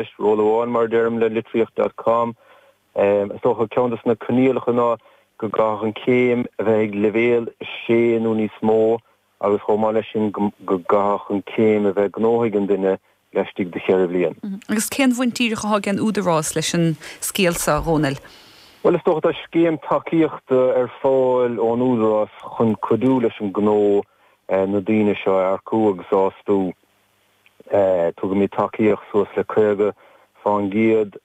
Is ról amháin, mar a deirim le Litríocht dot com, is dócha, ceann de na coinníollacha ná go gcaithfeadh an chéim a bheith ag leibhéal 6 nó níos mó agus chomh maith leis sin go gcaithfeadh an chéim a bheith gnótha ag an duine laistigh de cheithre bhliain. Agus cén bhaint díreach atá ag an Údarás leis an scéal seo, a Dhónaill? Bhuel, is dócha, tá scéim tacaíochta ar fáil ón Údarás chun cuidiú leis an gnó na daoine seo a earcú agus a fhostú. Tugaimid tacaíocht suas le 50 fán gcéad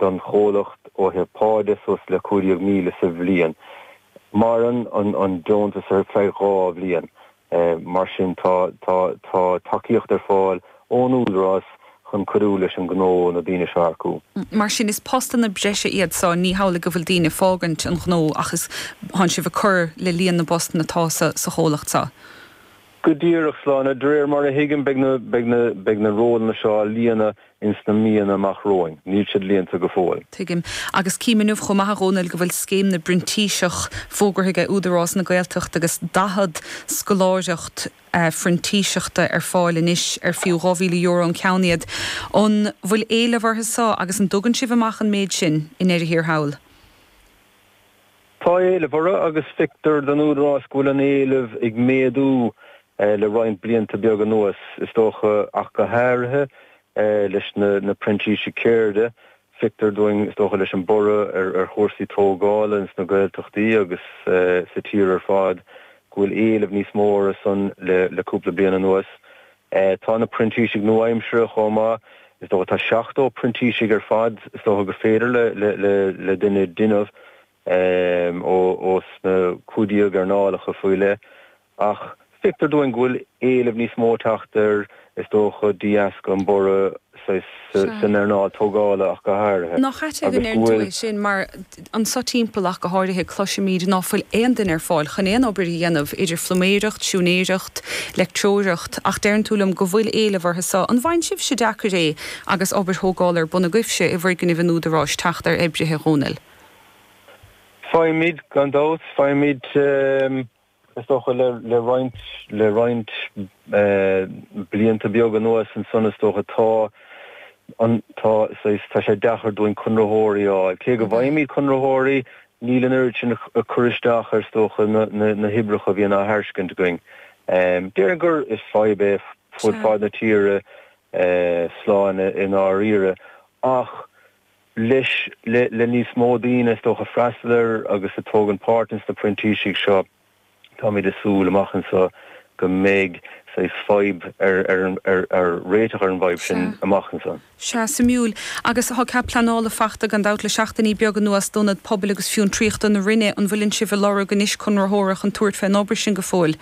don chomhlacht ó thaobh pá de, suas le 15,000 sa bhliain. Maireann an deontas ar feadh dhá bhliain. Mar sin tá tacaíocht ar fáil ón Údarás chun cuidiú leis an gnó na daoine seo a earcú. Mar sin is postanna breise iad seo, ní hamhlaidh go bhfuil daoine ag fágaint an ghnó ach is, tánn sibh ag cur le líon na bpostanna atá sa chomhlacht seo. Go díreach, Sláine. De réir mar a thuigim, beidh na rólanna seo á líonadh ins na míonna amach romhainn. Níl siad líonta go fóill. Tuigim. Agus cím inniu chomh maith, a Dhónaill, go bhfuil scéim na bprintíseach fógartha aige Údarás na Gaeltachta agus 40 scoláireacht phrintíseachta ar fáil anois ar fiú €2,000 an ceann iad. An bhfuil éileamh orthu seo agus an dtugann sibh amach an méid sin i ndeireadh thiar thall? Tá éileamh orthu agus feictear don Údarás go bhfuil an éileamh ag méadú le roinnt blianta beaga anuas. Is dócha, ach go háirithe leis na printísigh ceirde, feictear dúinn, is dócha, leis an borradh ar chúrsaí tógála ins na Gaeltachtaí agus sa tír ar fad, go bhfuil éileamh níos mó orthu san le cúpla bliain anuas. é. Tá na printísigh nua-aimsire chomh maith. Is dócha tá 70 printísigh ar fad is dócha gur féidir le duine déanamh ós na cúig déag earnálacha faoi leith. Ach feictear dúinn go bhfuil éileamh níos mó ag teacht ar is dócha de dheasca an borradh. san earnáil tógála ach go háirithe Nach ait go ndeir tú é sin mar anseo timpeall ach go háirithe cloisimid ná fuil aon duine ar fáil chun aon obair a dhéanamh idir phluiméireacht, siúinéireacht, leictreoireacht ach deireann tú liom go bhfuil éileamh orthu seo. An bhfaigheann sibhse deacair é agus obair thógála ar bun agaibhse i bhfoirgnimh an Údaráis teacht ar oibrithe, a Dhónaill? Faighimid, gan dabht. Faighimid. Is dócha le roinnt, le roinnt blianta beag anuas ansan is dócha, tá an, tá, saghas, tá sé deacair dúinn conraitheoirí a fháil. Cé go bhfaighimid conraitheoirí, níl an oiread sin ag cur isteach ar is dócha na, na, na hoibreacha a bhíonn á thairscint againn. Déarfainn gur, is fadhb é fud fad na tíre, Sláine i ndáiríre, ach. leis le níos mó daoine is dócha ag freastal air agus a thógann páirt ins na printísigh seo. Táimid ag súil amach anseo go mbeidh saghas fadhb ar ar réiteach ar an bhfadhb sin amach anseo. Sea, suimiúil. Agus tá cead pleanála fachta gan dabht le seachtainí beaga anuas d'ionad pobail agus fiontraíochta na Rinne. An bhfuileann sibh ag lorg anois conraitheora chun tabhairt fén obair sin go fóill?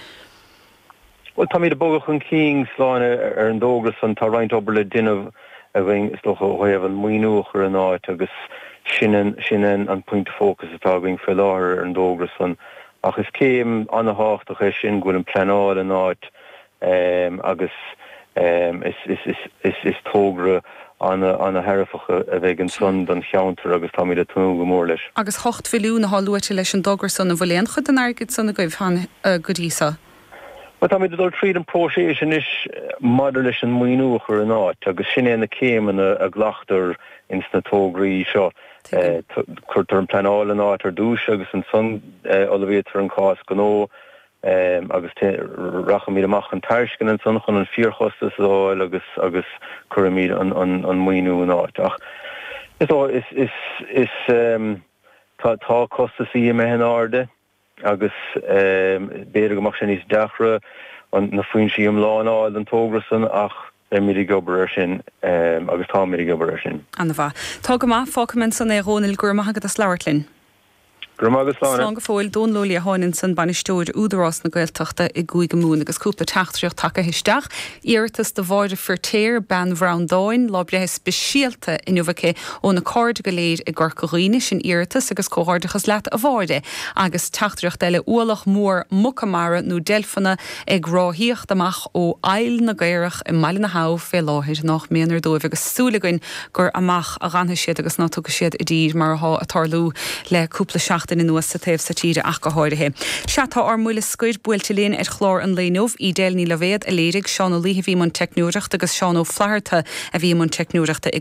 Bhuel, táimid ag bogadh chun cinn láidir ar an dtógra san. Tá roinnt obair le déanamh againn is dócha ó thaobh an maoiniú a chur in áit agus sin an an pointe fócais atá againn faoi láthair ar an dtógra san. Ach is céim ana-thábhachtach é sin go bhfuil an pleanáil in áit agus, Is togra ana-dhearfach a bheidh ansan don cheantar agus táimid ag tnúth go mór leis. Agus ocht milliún atá luaite leis an dtogra san, an bhfuil aon chuid den airgead san agaibh go dtí so? Bhuel, táimid ag dul tríd an próiseas anois maidir leis an maoiniú a chur in áit agus sin é na céimeanna a ghlactar ins na tograí seo. Cuirtear an pleanáil in áit ar dtúis agus ansan ullmhaíotar an cás gnó Ehm, agus te, rachaimid amach chun tairisceana ansan chun an fíorchostas a fháil agus, agus cuirfimid an, an, an maoiniú in áit. Ach, is dócha, is, is, is, ehm, tá, tá costasaí imithe in airde agus, ehm, b'fhéidir go mbeadh sé níos deacra an, na foinsí iomlána a fháil don togra san ach beimid ag obair ar sin, ehm, agus táimid ag obair ar sin. Ana-mhaith. Tá go maith, fágfaimid ansan é a Dhónaill, go raibh maith agat as labhairt linn. Gura maith agat. Slán go fóill. Dónal Ó Liatháin ansan Bainisteoir Údarás na Gaeltachta i gCúige Mumhan agus cúpla teachtaireacht tagtha isteach. Iarratas do Mháire Feirtéar, Bean Bhreandáin, lá breithe speisialta inniu aici óna cairde go léir i gCorca Dhuibhne. Sin iarratas agus comhghairdeachas leat a Mháire. Agus teachtaireacht eile, ualach mór muca mara nó deilfeanna ag ráthaíocht amach ó Aill na gCaorach i mBaile na hAbh fé láthair. Nách méanar dóibh agus súil againn gur amach a dh'fhanfaidh siad agus ná tiocfaidh siad i dtír mar athá a' tarlú le cúpla seachtain anuas sa taobh so tíre ach go háirithe. Sea, tá ár mbuille scoir buailte linn ar chlár an lae inniu. Edel Ní Loibhéad a léirigh, Seán Ó Laoithe a bhí i mbun teicneoireachta agus Seán Ó Flatharta a bhí i mbun teicneoireachta i